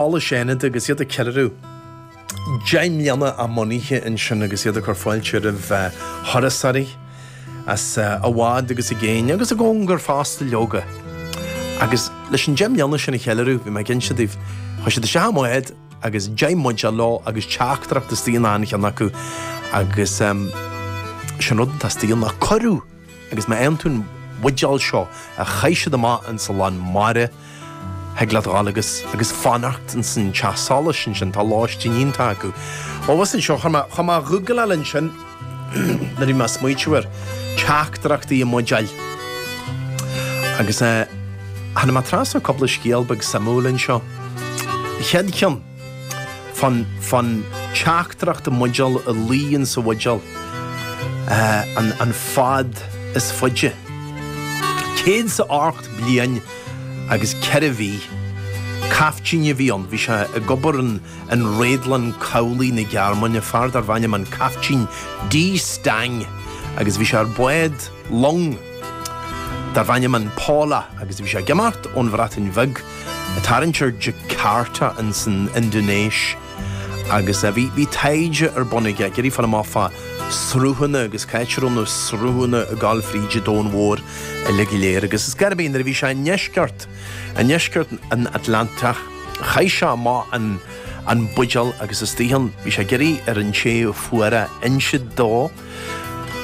Solais Fhánada agus iad ag ceiliúradh deich mbliana á mbunaithe ansin agus iad ag cur fáilte roimh thurasóirí as i bhfad agus i gcéin agus i gcóngar fosta leoga. Agus leis an deich mbliana sin a cheiliúradh bhí mé ag insint daoibh chuaigh siad isteach i mbád agus deich mbuidéal leo agus teachtaireacht istigh in achan cheann acu agus sin rud atá istigh ann ná cuireadh! Agus má fhaigheann tú an bhuidéal seo a chaith siad amach ins a lán mara thig leat a ghabháil agus agus fanacht ins an teach solais ansin, tá lóistín iontach acu. Abhus anseo chuaigh mé chuaigh mé a ghoogláil ansin nuair a bhí mé ag smaointeamh ar teachtaireachtaí i mbuidéil. Agus eh tháinig mé trasna ar cúpla scéal beag suimiúil anseo. An chéad cheann. fán fán teachtaireacht i mbuidéal a luigh in sa bhuidéal an an fad is faide céad is a hocht bliain agus ceithre mhí caiftín a bhí ann bhí sé ag obair in in réadlann cabhlaigh na Gearmáine fear darbh ainm an caiftín dí stang agus bhí sé ar bád long darbh ainm an Paula agus bhí sé ag imeacht ón Bhreatain Bheag Tarraingt ar Jakarta in san Indinéis agus bhí bhí taighde ar bun aige ag iarraidh fáil amach fá sruthanna agus cá háit a raibh na sruthanna ag gabháil fríd an domhan mhór uile go léir agus ar scor ar bith nuair a bhí sé i ndeisceart i ndeisceart an Atlantaigh chaith sé amach an an buidéal agus istigh ann. Bhí sé ag iarraidh ar an té a fuair é a insint dó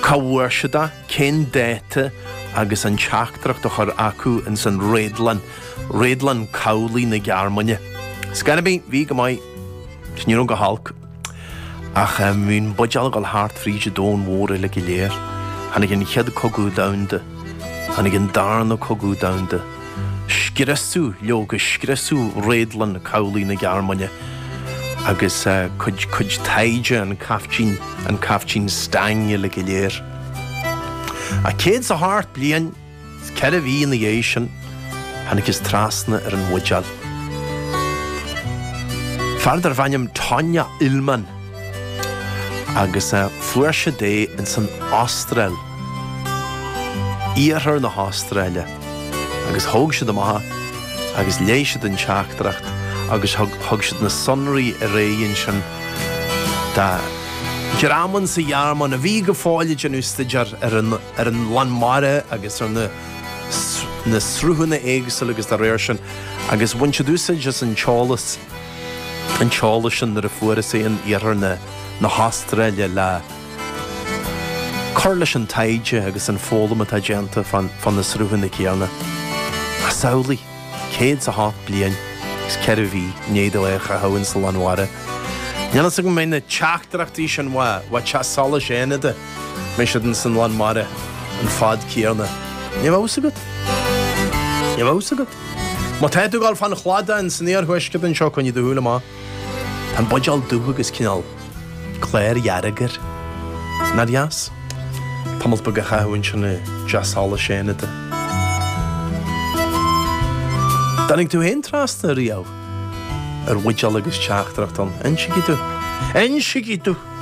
cá bhfuair siad é, cén dáta agus an teachtaireacht a chur chucu in san réadlann. Réadlann cabhlaigh na Gearmáine. Ar scor ar bith, bhí go maith, is ní raibh go holc. Ach bhí an buidéal ag dul thart fríd an domhan mhór uile go léir. Tháinig an chéad cogadh domhanda. Tháinig an darna cogadh domhanda. Scriosadh, leoga, scriosadh réadlann cabhlaigh na Gearmáine. Agus cuid, cuid taighde an caiftín, an caiftín Stang uile go léir. Ach céad is a hocht bliain. Ceithre mhí ina dhiaidh sin, thángthas trasna ar an mbuidéal. Fear darbh ainm Tonya Illman agus fuair siad é ins an Astráil, iarthar na hAstráile agus thóg siad amach é agus léigh siad an teachtaireacht agus thug siad na sonraí ar aghaidh ansin do dhream in sa Ghearmáin a bhí go fóill ag déanamh staidéar ar an ar an lán mara agus ar na sruthanna éagsúla agus dá réir sin agus bhain siad úsáid as an t-eolas an t-eolas sin nuair a fuarthas é in iarthar na hAstráile le cur leis an taighde agus an foghlaim atá déanta fá na sruthanna céanna. Samhlaigh. céad is a hocht bliain is ceithre mhí i ndiaidh dó é a chaitheamh in san lán mara. Níl fhios agam an mbeidh na teachtaireachtaí sin as teach solais Fhánada an mbeidh siad in san lán mara an fad céanna. Ní bheadh fhios agat. Ní bheadh fhios agat. Má tá tú ag dul fán chladach in san iarthuaisceart anseo coinnigh do shúile amach. Tá an buidéal dubh agus cineál cláir dhearg air. Nár dheas tamalt beag a chaitheamh ansin i dteach solais Fhánada. An dtáinig tú féin trasna riamh ar bhuidéal agus teachtaireacht ann? Insigí dúinn. Insigí dúinn!